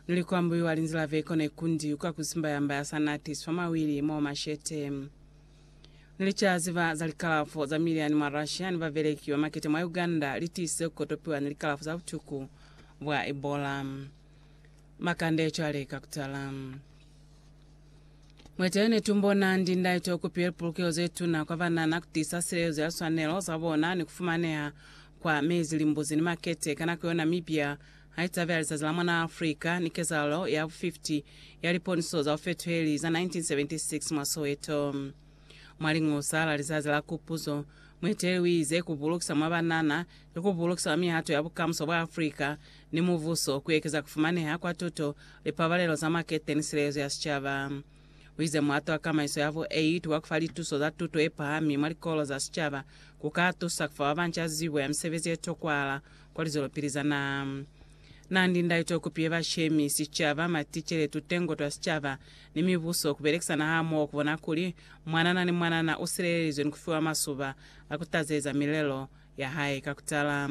Nili ku ambuiwa linzi la veko ne kundi kwa ku simba yamba ya sa natiswa mawili mwa mashete. Nili ca ziba za likalafo za miliani mwa Russia ni babeleki ba makete mwa Uganda li tiise ku kotopiwa ni likalafo za butuku bwa Ebola. Makande cwale ka kutala. Mwete yo ne tu mbona ndi ndaito ku piwe lipulukeho ze tuna kwa banana ku tiisa silelezo ya liswanelo za bona ni ku fumaneha kwa mezi, limbuzi ni makete ka nako yo Namibia Haicaba lizazi la mwanaa Afrika ni kezalalo ya bu 50 ya liponiso za bufetuheli za 1976 mwa Soweto. Mwa Liñusa la Lizazi la Kupuzo, mueteleli uize, Ku bulukisa mwa banana ki ku bulukisa mwa mihato ya bukamuso bwa Afrika ni mubuso, ku ekeza ku fumaneha kwa tuto, lipabalelo za makete ni silelezo ya sicaba. Uize muhato wa kamaiso ya bu 8 wa kufa lituso za tuto yepahami mwa likolo za sicaba ku ka tusa kufa babanca zibo ya misebezi yetokwahala Kwa lizwelopili za na na ni ndaito ku piye bashemi, sicaba, maticele, tutengo twa sicaba, ni mibuso ku belekisana hamoho ku bona kuli mwanana ni mwanana u silelelizwe ni ku fiwa masuba a ku tazeza milelo ya hae ka ku tala.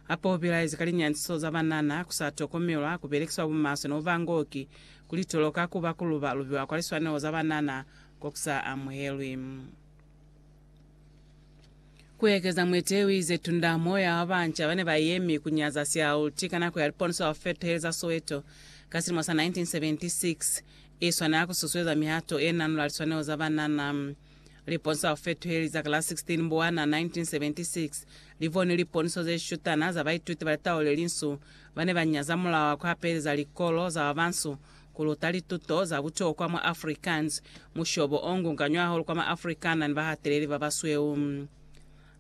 Hape u bilaezi ka linyantiso za banana ku sa tokomelwa, ku belekiswa bumaswe ni ku ba ngoki, ku litolo ka ku ba ku luba lubiwa kwa liswaneho za banana ko ku sa amuhelwi. Ku ekeza mwete u ize tunda moya wa banca ba ne ba yemi ku nyaza siaulti ka nako ya liponoso ya ku feteheleza Soweto ka silimo sa 1976 i swanela ku susueza mihato e nanula liswanelo za banana. Liponoso la ku feteheleza ka la 16 Mbuwana 1976 li boni liponoso ze shutana za baituti ba litau le linsu ba ne ba nyaza mulao wa ku hapeleza likolo za ba bansu Ku luta lituto za butokwa mwa Afrikaans, mushobo o ngunganywa hahulu kwa ma Afrikaner ni bahateleli ba basweu.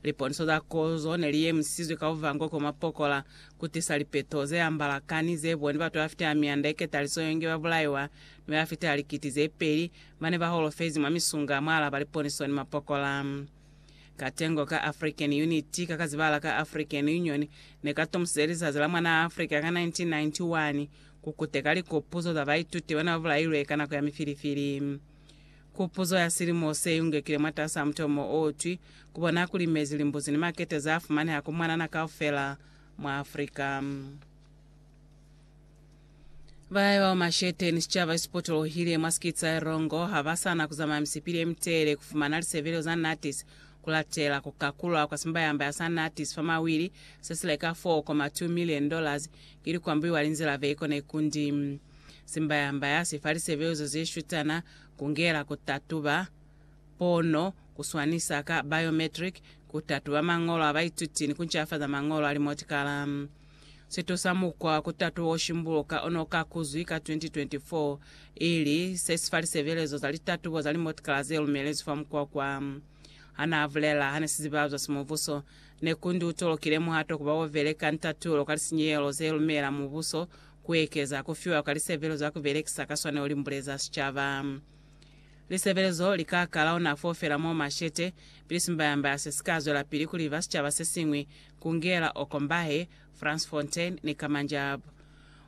Liponiso za kozo ne li yemisizwe ka buvango ko mwa pokola, ku tisa lipeto ze ambala ka ni ze boni batu ba fita mianda ye ketaliso yo nge ba bulaiwa, ni ba fita likiti ze peli ba ne ba holofezi mwa misunga mwa alaba liponiso ni mapokola. Katengo ka African Unity, ka ka zibahala ka African Union, ne ka tomusize lizazi la mwanaa Afrika ka 1991, Ku kuteka likopuzo za baituti bana ba bulailwe ka nako ya mifilifili. Kupuzo ya silimo se yungekile mwatas'a mutomo o twi, Ku bona kuli mezi, limbuzi ni makete za fumaneha ku mwanana kaufela mwa Afrika. Bahae bao Machete ni sicaba esipotolohile mwa sikiti sa Erongo ha ba sa na ku zamaya misipili ye mitelele ku fumana lisebelelo za Natis ku latela ku kakulwa kwa simbayamba ya sa Natis fa mawili se si leka 4.2 million dollars Ili ku ambiwa linzila ve kone kundi simbayambaya si fa lisebelizo ze shutana, ku ngela ku tatuba pono, ku swanisa ka biometric, ku tatuba mañolo a baituti ni ku ncafaza mañolo a limotikala. Si tusa mukwa wa ku tatuba o shimbuluka o n'o ka kuzwi ka 2024 ili se si fa lisebelezo za litatubo za limotikala ze lumelezwi fa mukwa kwa, ha n'a bulela ha ne sizibazwa simubuso. Ne ku ndu tolokile muhato kuba wo beleka ntatulo ka lisinyehelo ze lumela mubuso ku ekeza ku fiwa kwa lisebelo za ku belekisa ka swanelo limbule za sicaba. Lisebelezo li ka kala ona fo fela mo mashete, pili simbayambaya se si ka zwelapili ku liva sicaba se siñwi, ku ngela Okombahe, Fransfontein ni Kamanjab.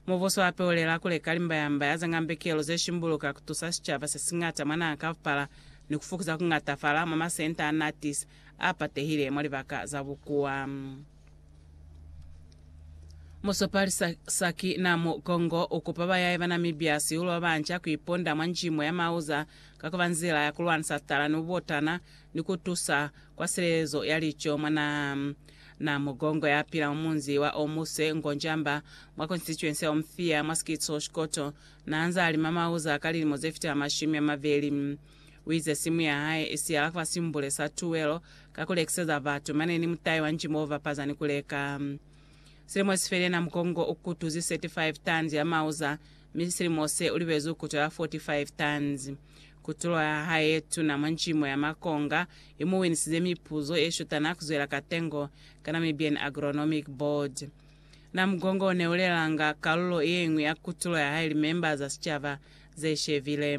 Mubuso hape u lela ku leka limbayambaya za ngambekelo ze shimbuluka ku tusa sicaba se siñata mwa naha kaupala ni ku fukuza ku ñatafala mwa masenta a Natis a patehile mwa libaka za bukuwa. Musopali Saki Namugongo u kupa bayaye ba Namibia siulu ba banca ku iponda mwa njimo ya mauza ka ku ba nzila ya ku lwanisa tala ni bubotana ni ku tusa kwa silelezo ya lico mwa naha. Namugongo ya pila mwa munzi wa Omuse, Ngonjamba, mwa konsitituensi ya Omphia mwa sikitsi Oshkoto, n'a nz'a lima mauza ka lilimo ze fitela mashumi a mabeli. U ize simu ya hae i siyala kwa simbule sa tuwelo ka ku lekiseza batu, mane ni mutai wa njimo u bapaza ni ku leka. Silimo si felena Mkongo u kutuzi 35 tons ya mauza, mi silimo se u libezi u kutula 45 tons. Kutulo ya hae ye tuna mwa njimo ya makonga i mu winisize mipuzo ye shutana ku zwela ka tengo ka Namibian Agronomic Board. Na Mkongo u ne u lelanga kalulo ye ñwi ya kutulo ya hae limemba za sicaba ze shebile.